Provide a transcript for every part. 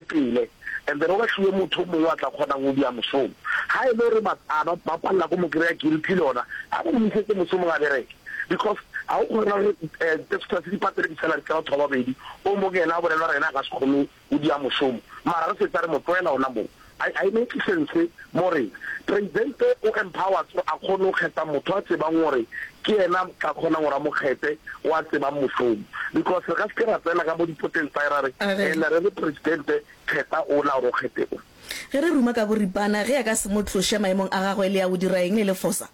Pele, and then o ba fiwe motho o mongwe yo a tla kgonang go dia mosomo. Ga e le gore ba a ba, ba palela go mo kry-a guilty le ona, a mo gomisetse mosomong a bereke. Because ga o kgona gore Pastor se di patele di-salary tsa batho ba babedi, o mong ena a bolele gore ena a ka se kgone go dia mosomo, mara re fetsa re mo tloela ona moo. Ga, ga e make sense Mo re, Presidente o empowers gore a kgone go kgetha motho a tsebang gore ke yena a tla kgonang gore a mo kgethe, o a tsebang mošomo. Because re ka se ke ra tsena ka mo dipoteng tsa hae ra re, A re. Ena re re, Presidente, kgetha ola gore o kgethe o. Ge re ruma ka boripana, ge a ka se mo tloše maemong a gagwe, le ya go dira eng le le fosa?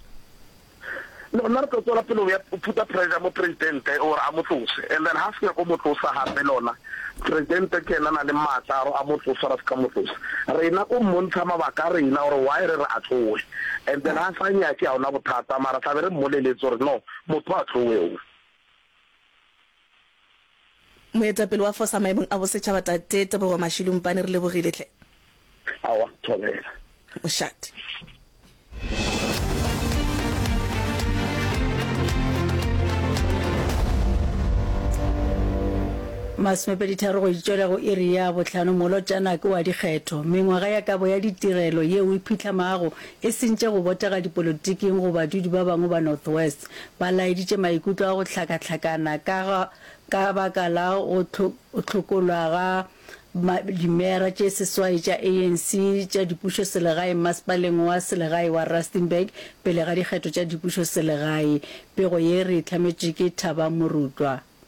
No, nna re tlo tswela pele go ya phuta pressure mo presidente gore a mo tlose and then ha se nyako mo tlosa gape lona presidente ke yena na le maatla a gore a mo tlosa ra se ka mo tlosa rena ko mmontsha mabaka a rena gore why re re a tlowe and then ha sa nyake ga ona bothata mara tlabe re mmoleletse gore no motho a tlowe o Moetapele wa Fosa maemong a bosetšhaba Tate Tebogo Mashilumpane, re lebogile hle. Aowa, thobela. Mošate. Masomepeditharo go itšwela go iri ya bohlano molotšana ke wa dikgetho. Mengwaga ya kabo ya ditirelo yeo e phitlhamago e sentše go botega dipolotiking go badudi ba bangwe ba North West. Ba laeditše maikutlo a go hlakahlakana ka ga ka baka la go hlokolwa ga dimera tše seswai tša ANC tša dipušo selegae masepaleng wa selegae wa Rustenburg pele ga dikgetho tša dipušo selegae. Pego ye re e hlametšwe ke Thaba Morutwa.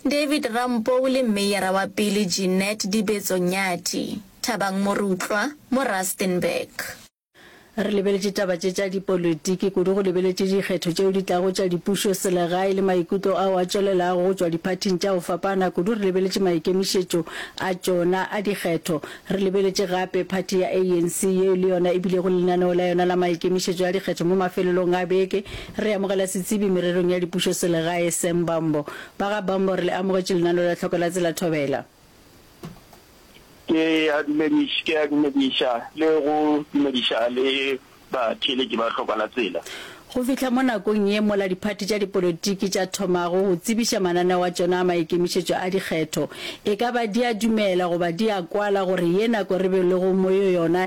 David Rampou le Meyara wa pele Jeanette Dibetso Nyathi, Thabang Morutlwa, mo Rustenburg. Re lebeletše taba tše tša dipolotiki, kudu go lebeletše dikgetho tšeo di tlago tša dipušo selegae le maikutlo ao a tšwelelago go tšwa diphathing tša go fapana, kudu re lebeletše maikemišetšo a tšona a dikgetho. Re lebeletše gape phathi ya ANC yeo le yona e bilego le lenaneo la yona la maikemišetšo a dikgetho mo mafelelong a beke. Re amogela setsebi mererong ya dipušo selegae Sam Bambo. Ba ga Bombo re le amogetše lenaneo la Tlhoko la Tsela Thobela. Ke a dumediša, ke a dumediša le go dumediša le batheeletši ba Tlhoko la Tsela. Go fihla mo nakong ye mola diphathi tša dipolotiki tša thomago go tsebiša mananeo a tšona a maikemišetšo a dikgetho, e ka ba di a dumela goba di a kwala gore ye nako re be lego mo yo yona